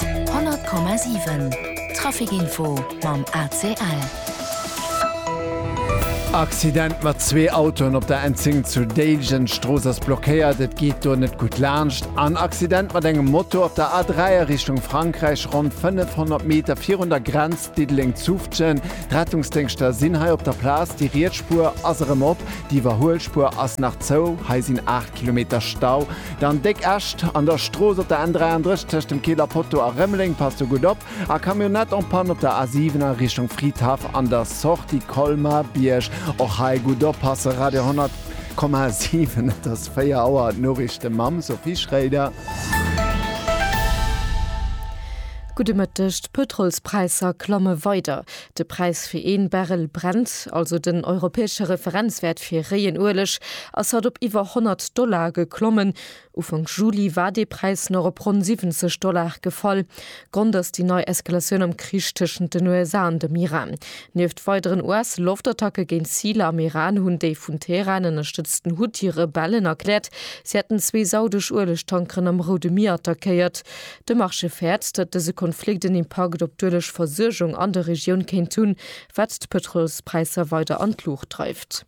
100,7 Traficinfo mam ACL. Accident mat zwee Autoen op der N10 zu Déiljen, d'Strooss ass blockéiert, et geet do net gutt laanscht. An Accident mat engem Moto op der A3 a Richtung Frankräich, ronn 500 Meter virun der Grenz Diddeleng-Zufftgen. D'Rettungsdéngschter sinn hei op der Plaz, déi riets Spuer ass erëm op, déi Iwwerhuelspuer ass nach zou. Hei sinn 8. Kilometer Stau dann déck Äscht an der Strooss op der N33 tëscht dem Keel a Poteau a Rëmeleng, passt do gutt op. A Camionnette en Panne op der A7 a Richtung Fridhaff an der Sortie Colmar-Bierg, och hei gutt oppasse. Radio 10,7 Et ass 4 Auer, d'Noriichte mam Sophie Schréider. Gudde Mëtteg, D'Pëtrolspräisser klamme weider. De Präis fir ee Barrel Brent, also den europäesche Referenzwäert fir réien Ueleg, ass haut op iwwer 100 Dollar geklommen. Ufank Juli war dee Präis nach op ronn 70 Dollar gefall. Grond ass déi nei Eskalatioun am Krich tëschent den USA an dem Iran. Nieft weideren US-Loftattacke géint Ziler am Iran hunn déi vun Teheran ënnerstëtzten Huthi-Rebellen erkläert, si hätten zwee saudesch Uelegtankeren am Roude Mier attackéiert. De Marché fäert, datt dëse Konflikt en Impakt op d'Ueleg Versuergung an der Regioun kéint hunn, wat d'Pëtrolspräisser weider an d'Luucht dreift.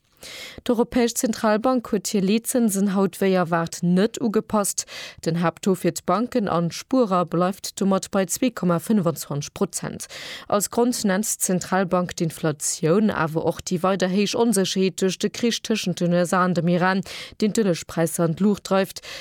D'Europäesch Zentralbank huet hir Leetzënsen haut wéi erwaart net ugepasst. Den Haapttaux fir d'Banken an d'Spuerer bleift domat bei 2,25 Prozent. Als Grond nennt d'Zentralbank d'Inflatioun, awer och déi weider héich Onsécherheet duerch de Krich tëschent den USA an dem Iran, deen d'Uelegspräisser an d'Luucht dreift,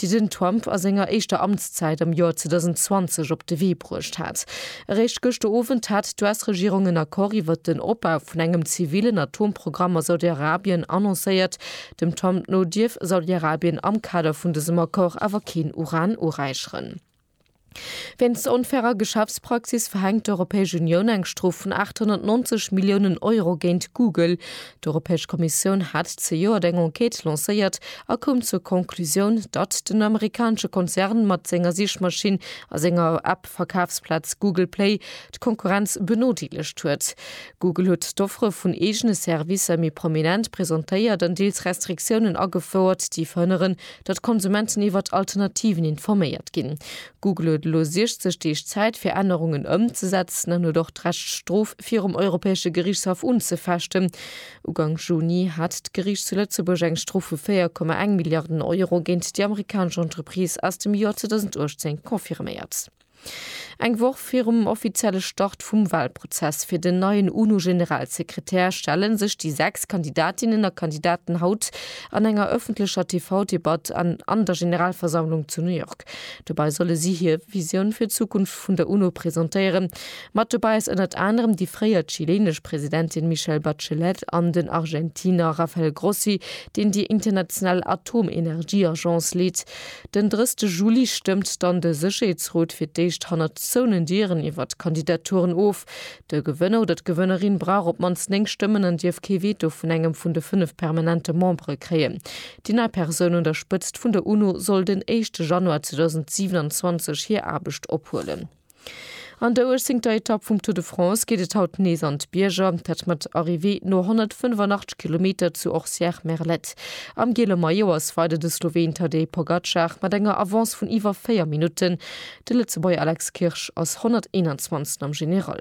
déi den Trump a senger éischter Amtszäit am Joer 2020 op de Wee bruecht hat. Eréischt gëschter Owend hat d'US-Regierung en Accord iwwert den Opbau vun engem zivillen Atomprogramm a Saudi-Arabien annoncéiert. Dem Trump no dierf Saudi-Arabien am Kader vun dësem Accord awer keen Uran uräicheren. Wéinst der onfairer Geschäftspraxis verhänkt d'Europäesch Unioun eng Strof vun 890 Milliounen Euro géint Google. D'Europäesch Kommissioun hat zejoert eng Enquête lancéiert a koum zur Conclusioun, datt den amerikanesche Konzern mat senger Sichmaschinn a senger App-Verkafsplaz Google Play d'Konkurrenz benodeelegt huet. Google huet d'Offere vun eegene Servicer méi prominent presentéiert an deels Restriktiounen agefouert, déi verhënneren, datt d'Konsumenten iwwert Alternativen informéiert ginn. Google huet elo 60 Deeg Zäit fir Ännerungen ëmzesetzen an huet och d'Recht d'Strof virum Europäesche Geriichtshaff unzefechten. Ugank Juni hat d'Geriicht zu Lëtzebuerg eng Strof vu 4,1 Milliarden Euro géint déi amerikanesch Entreprise aus dem Joer 2018 confirméiert. Eng Woch virum offizielle Start vum Walprozess fir den neien UNO-Generalsekretär stelle sech déi sechs Kandidatinnen a Kandidaten haut an enger ëffentlecher TV-Debatt an der Generalversammlung zu New York. Dobäi solle si hir Visioun fir d'Zukunft vun der UNO presentéieren. Mat dobäi ass ënnert anerem déi fréier chilenesch Presidentin Michelle Bachelet an den Argentiner Rafael Grossi, deen déi international Atomenergieagence leet. Den 30 Juli stëmmt dann de Sécherheetsrot fir d'éischt hannert zouenen Dieren iwwer d'Kandidaturen of. De Gewënner oder d'Gewënnerin brauch op d'mannst 9 Stëmmen an dierf kee Veto vun engem vun de 5 permanente Membere kréien. Déi nei Persoun un der Spëtzt vun der UNO soll den éischte Januar 2027 hir Aarbecht ophuelen. An der 18ter Etapp vum Tour de France geet et haut nees an d'Bierger, dat mat Arrivée no 185 Kilometer zu Orcières-Merlette. Am giele Maillot ass weider de Sloween Tadej Pogacar mat enger Avance vun iwwer 4 Minutten. De Lëtzebuerger Alex Kirsch ass 121. am General.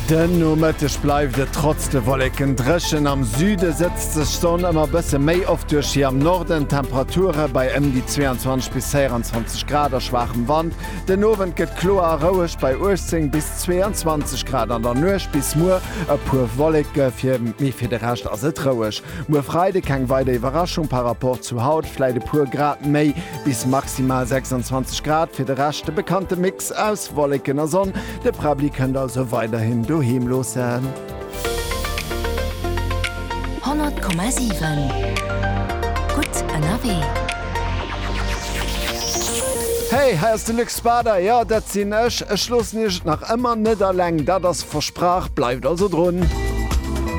Den Nomëtteg bleift et trotz de Wolleken dréchen, am Süde sëtzt sech d'Sonn ëmmer bësse méi oft duerch, hir am Norden Temperature bei ëm déi 22 bis 24 Grad a schwaachem Wand. Den Owend gëtt kloer a roueg bei 18 bis 22 Grad, an der Nuecht bis muer e puer Wolleke, mee fir de Rescht ass et roueg. Muer Freide keng weider Iwwerraschung par Rapport zu haut, vläit e puer Grad méi. Bis maximal 26 Grad, fir de Rescht de bekannte Mix aus Wolleken a Sonn. De Prabli kënnt also weiderhin doheem loossen. 100,7 gutt ënnerwee. Hey, hei ass de Luc Spader, jo dat sinn ech. Ech loossen iech et nach ëmmer net alleng, dat ass versprach. Bleift also drun.